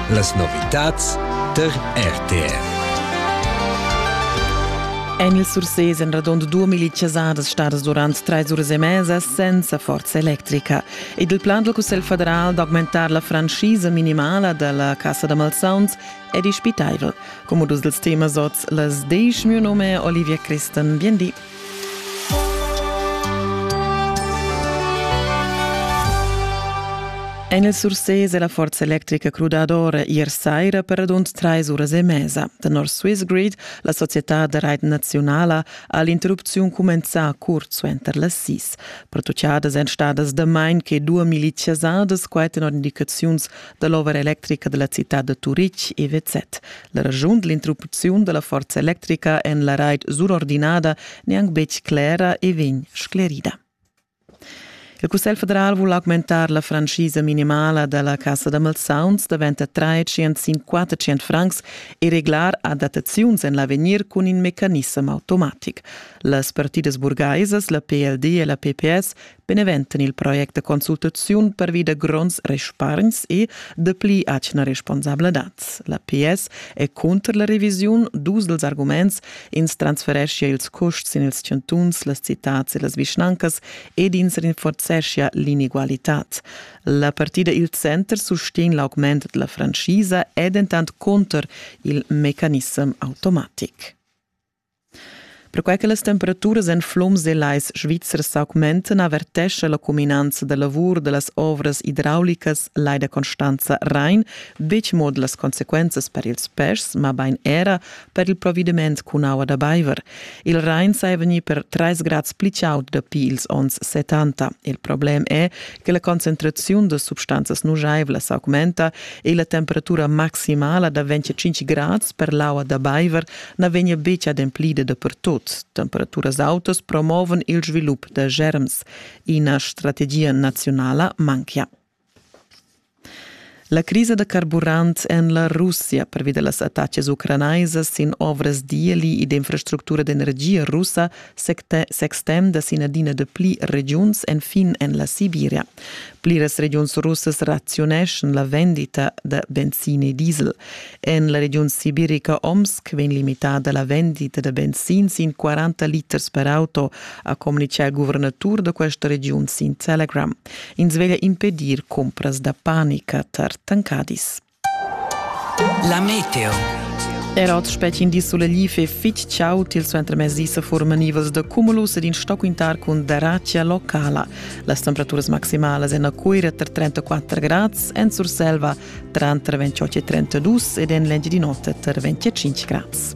Las novitads tar RTR. En il Surses èn radund 2000 chasadas stadas durant trais uras e mesa senza forza electrica. Ed il plan dal Cussegl federal d'augmentar la franschisa minimala da la cassa da malsauns è dispitaivel. Come dus dels temas oz, las desch mio nome Olivia Christen, bien di. En il Surses è la forza electrica crudadora ier saira per radund trais uras e mesa. Tenor Swiss Grid, la società da rait nazionala, ha l'interrupziun cumenzà curt suenter las sis. Pertuchadas èn stadas damain che duas miliziasadas, quai tenor indicaziuns da l'ovra electrica della citad da Turitg EWZ. La ragiun dell'interrupziun della forza electrica en la raid surordinada neanc betg clera e vegn sclerida. Il Cussegl federal vul augmentar la franchisa minimala della Cassa da malsauns davent a 350 francs e reglar adattaziuns en l'avegnir cun in mecanissem automatic. Las partidas burgaisas, la PLD e la PPS, benevent il project de consultaziun pervi da gronds respargns e de pli atgna responsabladad. La PS è contro la revisiun dus dels arguments ins transfereschia ils custs in ils chantuns, las citats e las vischnancas ed ins rinforzeschia l'inegualitad. La partida Il Center sustegn l'augment della franchisa è dentant contro il mecanissem automatic. Perquai che las temperaturas en flums e lais svizzers s'augmentan avertescha la cuminanza da lavur da las ovras idraulicas Leida Constanza Rain betg mo las consequenzas per ils peschs, mabain era per il provediment cun aua da baiver. Il Rain saja vegnì per 3 grads pli chaud dapi ils onns 70. Il problem è che la concentraziun da substanzas nujaivlas augmenta e la temperatura maximala da 25 grads per l'aua da baiver na vegnia betg ademplida dapertut. Temperaturas autas promovan il svilup da germs. Ina strategia naziunala manchia. La crisa da carburant en la Russia pervi da las attacas ucranaisas sin ovras d'ieli e d'infrastructura d'energia russa s'extenda sin adina de pli regiuns enfin en la Sibiria. Pliras regiuns russas raziuneschan la vendita da benzin e diesel. En la regiun sibirica Omsk vegn limitada la vendita da benzin sin 40 liters per auto, ha communitgà il guvernatur da questa regiun sin Telegram. Ins veglia impedir cumpras da panica tar tancadis. La meteo. Er oz spetgin di suleliv e fitg chau til suentermezdi se forma nivels de cumulus ed in stoquintar cun daracia locala. Las temperaturas maximalas en Coira tra 34 grads, en Surselva tra 28 e 32 ed en Lengi di notte tra 25 grads.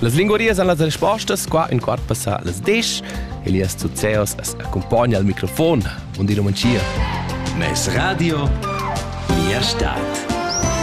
Las linguarias èn las respostas qua in quart passà las desch. Elias Zuzeos as accumpagna al microfon. Buondì Romancia. Mes radio, mia stad.